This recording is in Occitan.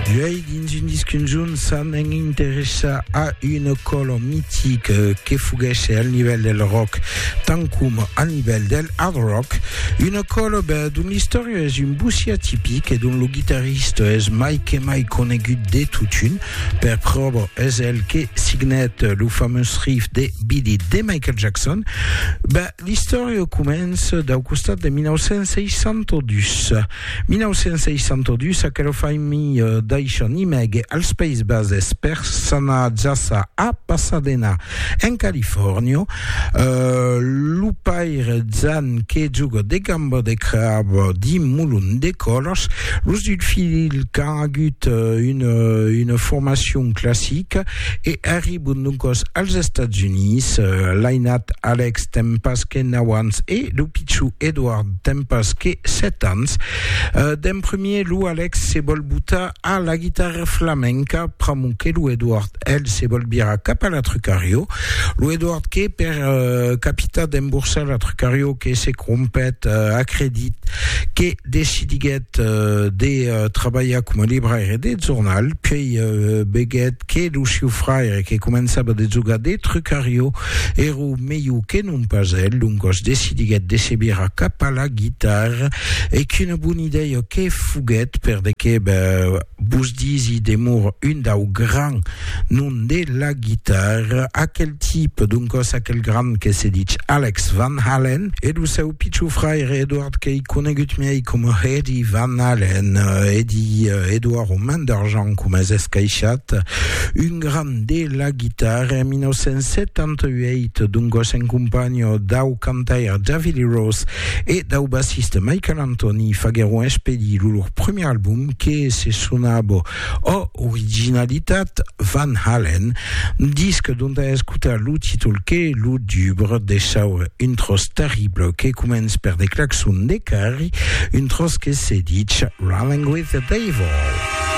D'uèi dins un disc un jorn s'a m'en interessar a una còlo mitic que foguèsse al nivèl del rock tant coma al nivèl del hard rock una còlo ben, dont l'istòria es un bocí atipic e dont lo guitarrista es mai que mai conegut de totun per pròva es el que signèt lo fameus riff de Beat It de Michael Jackson ben, L'istòria comença dau costat de 1962. 1962, aquela familha daishan imègue als Païses Bases per s'anar jaça a Pasadena, en Califòrnia. Lo paire Jan que joga de gamba de crab dins molon de còlas. Los dus filhs qu'an agut una formacion classica. E arribon doncòs als Estats Units, l'ainat Alex ten pas que nau ans e lo pichon Edward ten pas que sèt ans. D'en premier, lo Alex se vòl botar a la guitarra flamenca, pr'amor que lo Edward, el, se vòl virar cap a la Trucario. Lo Edward que, per capitar d'emborsar la Trucario, que se crompèt, acredit que, decidiguèt de trabalhar coma libraire de jornal, puèi veguèt que lo siu fraire que començava de jogar de trucarió èra melhor que non pas el, doncas decidiguèt de se virar cap a la guitarra e qu'una bona idèia que foguèt per de que Vos disi demor un dau gran nom de la guitarra, aquel tipe, doncòs aquel grand que se dich Alex Van Halen, e lo seu pichon fraire Edward qu'ei conegut miei coma Eddie Van Halen, Eddie, Edward o Man d'Argent coma es escaishat, un grand de la guitarra en 1978, doncòs en companha dau cantaire David Lee Roth e dau bassiste Michael Anthony faguèron expedir lo lor premier album, que se sonava Oh Originalitat, Van Halen, un disc dont a escotar lo títol que lo dubre de saure un tròç terrible que comença per de claxons de carri, un tròç que se ditz Running with the Devil.